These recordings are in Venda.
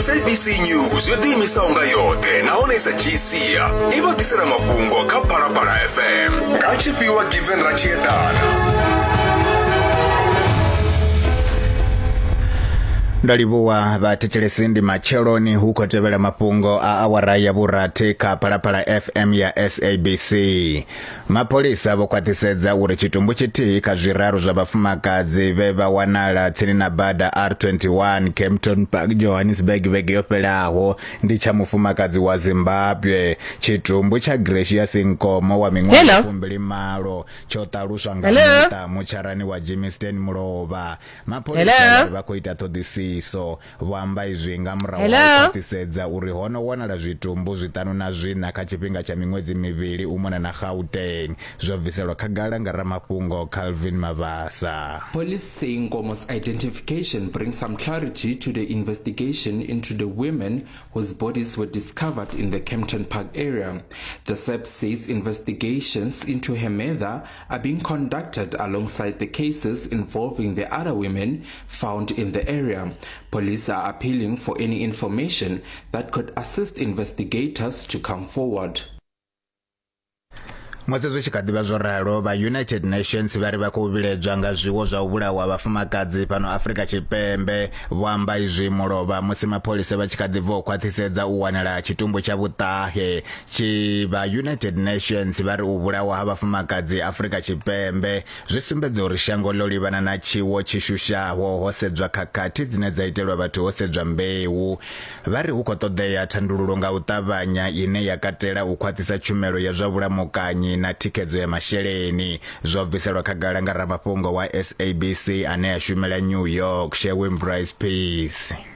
sabc news yo ḓiimisaho nga yoṱhe nahone i sa dzhii sia i vha ḓisela mafhungo kha phalaphala fm nga tshifhiwa given ratshiedana nda livhuwa vhathetshelesi ndi matsheloni hu khou tevhela mafhungo a awara ya vhurathi kha phalaphala fm ya sabc Mapholisa vho khwaṱhisedza uri tshitumbu tshithihi kha zwiraru zwa vhafumakadzi vhe vha wanala tsini na bada R21 Kempton Park Johannesburg vhege yo fhelaho ndi tsha mufumakadzi wa Zimbabwe. Tshitumbu tsha Gracia Sinkomo wa miṅwaha fumbili malo tsho ṱaluswa nga muṱa mutsharani wa Jimmy Stan Mulovha. Mapholisa vha khou ita ṱhoḓisiso. Vho amba izwi nga murahu ha u khwaṱhisedza uri ho no wanala zwitumbu zwiṱanu na zwiṋa kha tshifhinga tsha miṅwedzi mivhili u mona na Gauteng, zwo bviselwa khagala nga ramafhungo Calvin Mabasa. Police say Nkomo's identification brings some clarity to the investigation into the women whose bodies were discovered in the Kempton Park area. The SAPS says investigations into her murder are being conducted alongside the cases involving the other women found in the area. Police are appealing for any information that could assist investigators to come forward. musi zwi tshi kha ḓivha zwo ralo vha united nations vha ri vha khou vhiledzwa nga zwiwo zwa u vhulawa vhafumakadzi fhano afrika tshipembe vho amba izwi mulovha musi mapholisa vha tshi kha ḓi bva u khwaṱhisedza u wanala tshitumbu tsha vhuṱahe tshi vha united nations vha ri u vhulawa ha vhafumakadzi afurika tshipembe zwi sumbedza uri shango ḽo livhana na tshiwo tshi shushaho ho sedzwa khakhathi dzine dza itelwa vhathu ho sedzwa mbeu vha ri hu khou ṱoḓea thandululo nga u ṱavhanya ine ya katela u khwaṱhisa tshumelo ya zwa vhulamukanyi na thikhedzo ya masheleni zwo bviselwa khagala nga ramafhungo wa sabc ane a shumela new york sherwin brice peace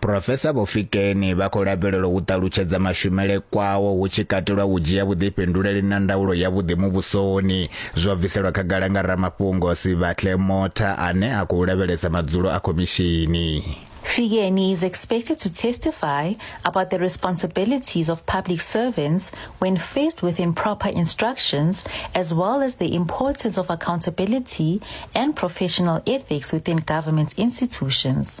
Profesa Vho Fikeni vha khou lavhelelwa u ṱalutshedza mashumele kwawo hu tshi katelwa u dzhia vhuḓifhinduleli na ndaulo ya vhuḓi muvhusoni zwo bviselwa khagala nga ramafhungo Sibatle Motha ane a khou lavhelesa madzulo a khomishini. Fikeni is expected to testify about the responsibilities of public servants when faced with improper instructions, as well as the importance of accountability and professional ethics within government institutions.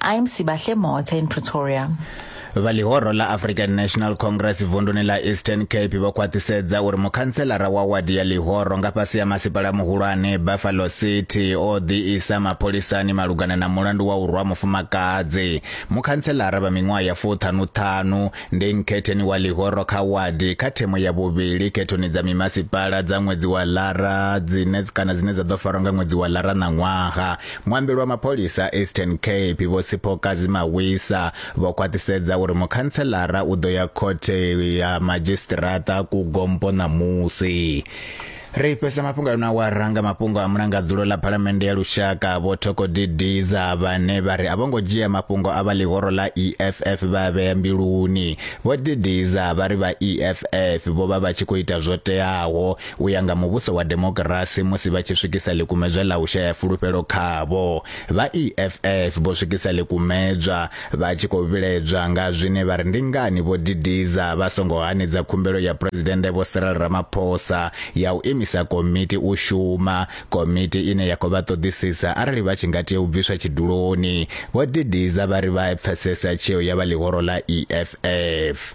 I'm Sibahle Motha in Pretoria. vha ḽihoro ḽa african national congress vunduni ḽa eastern cape vho khwaṱhisedza uri mukhantselara wa wadi ya ḽihoro nga fhasi ya masipala muhulwane buffalo city o ḓiisa mapholisani malugana na mulandu wa u rwa mufumakadzi mukhantselara vha miṅwaha ya fuṱhanuṱhanu ndi nkhetheni wa ḽihoro kha wadi kha themo ya vhuvhili khethoni dza mimasipala dza ṅwedzi wa lara dzine kana dzine dza ḓo farwa nga ṅwedzi wa lara ṋaṅwaha Muambeli wa mapholisa a Eastern Cape Vho Sipho Kazi Mawisa vho khwaṱhisedza uri mukhantselara u ḓo ya khothe ya madzhisiṱiraṱa ku Gompo ṋamusi. Ri fhesa mafhungo a no awara nga mafhungo a mulangadzulo ḽa phalamennde ya lushaka vho Thoko Didiza vhane vha ri a vho ngo dzhia mafhungo a vha ḽihoro ḽa EFF vha vhea mbiluni. Vho Didiza vha ri vha EFF vho vha vha tshi khou ita zwo teaho u ya nga muvhuso wa demokirasi musi vha tshi swikisa ḽikumedzwa ḽa u shaya fulufhelo khavho. Vha EFF vho swikisa ḽikumedzwa vha tshi khou vhiledzwa nga zwine vha ri ndi ngani vho didiza vha songo hanedza khumbelo ya Phresidennde Vho Cyril Ramaphosa ya u imisa komiti u shuma, komiti ine ya khou vha ṱoḓisisa arali vha tshi nga tea u bviswa tshiduloni. Vho didiza vha ri vha pfesesa tsheo ya vha ḽihoro ḽa EFF.